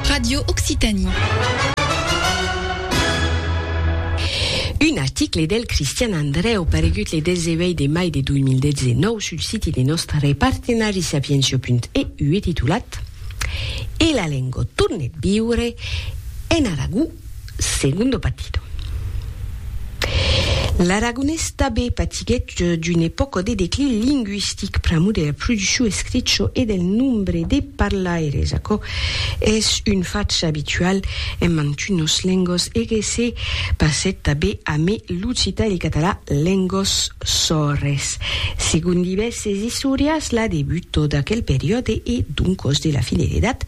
Radio Occitanie. Un article del Cristian Andrèu paregut le 18 de mai de 2019 sul siti de nòstre partenari sapientia.eu e titulat E la lenga tornet viure en Aragó? Segundo Patito. L'aragonés tabé patiguèt d'una epòca de declin lingüistic pr'amor dera produccion escricho e del nombre de parlaires. Aquò es un fach abitual en mantunos lengos e que se passèt tabé amé l'occitan e le catalan, lengos sòrres. Segon divèrses istorians, la debuto d'aquel periòde e doncos de la fin de l'edat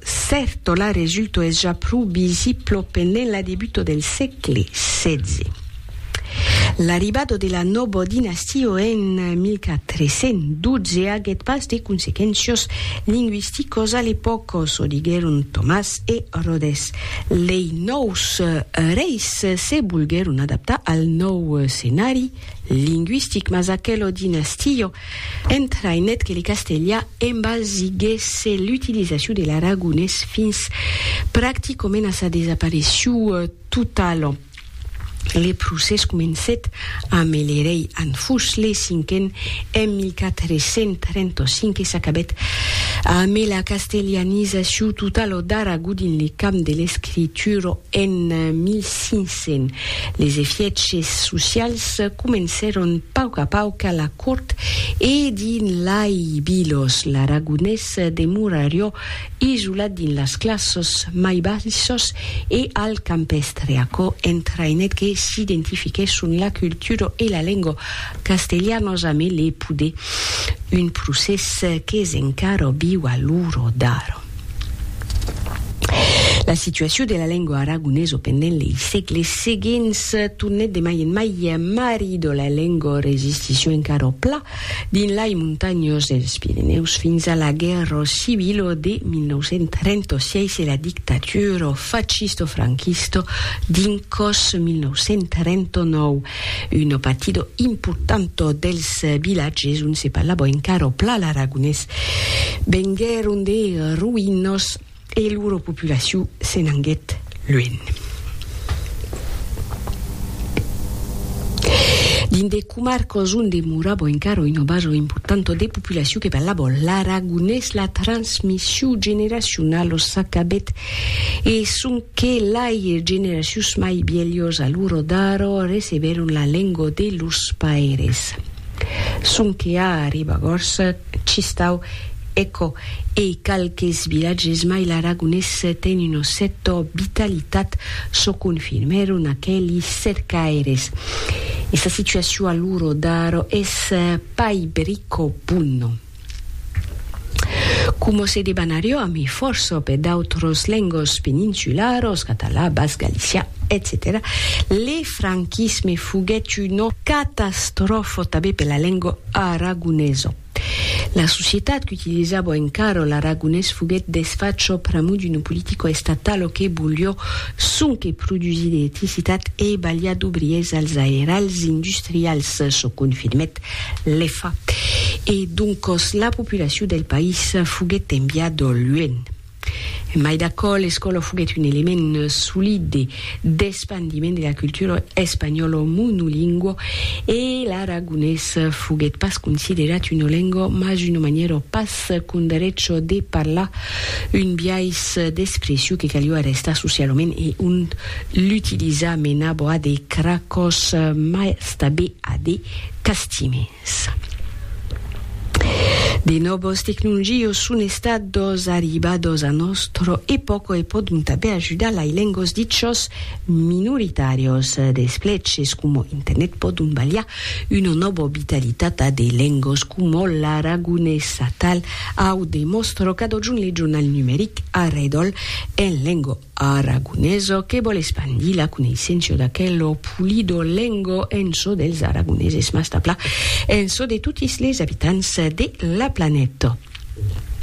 Certo, la resulto es ja pro visiblo pendent la debuto del sègle setze. L'arribado de la nobo dinastio en 1412 aguèt pas de consequéncios lingüisticos a l'epòca, çò diguèron Tomàs e Rodés. Lei nòus reis se volguèron adaptar al nòu scenari lingüistic, mas aquelo dinastio Entrainèt que le castelha embalsiguèsse l'utilizacion de l'aragonés fins practicament a sa desaparecciu totala. Le procès comencèt amé le rei Anfus le Cinquen en 1435 e s'acabèt amé la castelhanizaciu totala d'Aragó dins le camp de l'escritura en 1500. Sent les efièches socials comencèron pauc a pauc a la cort e dins lai vilos l'aragonés demorarió isolat dins las classes mai baissas e al campèstre. Aquò entraïnèt que s'identifiquèsson la cultura e la lenga castelhanas a mele poder, un procès qu'es encara viu a l'ora d'ara. La situacion de la lengua aragonesa pendent lei sègles seguents tornèt de mai en mai marrido la lengua resisticion encara au pla dins lai montanhas dels Pirenèus fins a la guèrra civila de 1936 e la dictatura fascista-franquista dins còs 1939. Uno partido importanto dels vilatges on se parlava encara o pla l'aragonés venguèron de roïnos e loro populacion se n'anguèt luènh. Dins de comarcas on demorava encara una basa importanta de populacion que parlava l'aragonés, la transmission generacionala s'acabèt E sonque lai generacions mai vielhos a loro daro recebèron la lengo de los paires. Sonque a Ribagorça, Chistau, Eco e qualques vilatges mai l'aragonés ten una cèto vitalitat çò confirmèron aqueli cercaires. E sa situacion a loro daro es pai brico bona. Coma se debanaré jo a mi fòrça per d'autras lengas peninsularas, catalan, basc, galician, etcetèra, le franquisme foguèt una catastròfa tanben per la lenga aragonesa. La societat qu'utilizava encara l'aragonés foguèt desfacha pr'amor d'una politica estatala que voliá sonque produsir d'electricitat e balhar d'obriers als airals industrials, çò confirmèt Lefa. E doncos la populacion del país foguèt enviada luènh. Mai d'aquò, l'escòla foguèt un element solide d'espandiment de la cultura espanhòla monolingua e l'aragonés foguèt pas considerat una lenga mas una manièra pas qu'un darech de parlar, un biais d'expression que caliá arrestar socialament e ont l'utilizar menava a de cracòs mai tabé a de castiments. De nòbos tecnungios son estados arribados a nòstro epòco e pòdon tabé ajudar lai lengos dichos minoritarios. D'espleches como internet pòdon balhar una nòbo vitalitat a de lengos como l'aragonés atal au de mòstro cadojun le jornal numeric Arredol en lengo. Aragoneso que vòl espandir la coneisséncia d'aquelo pulido lengo en çò dels aragoneses mas d'aplà en çò de totis les abitants de la planeta.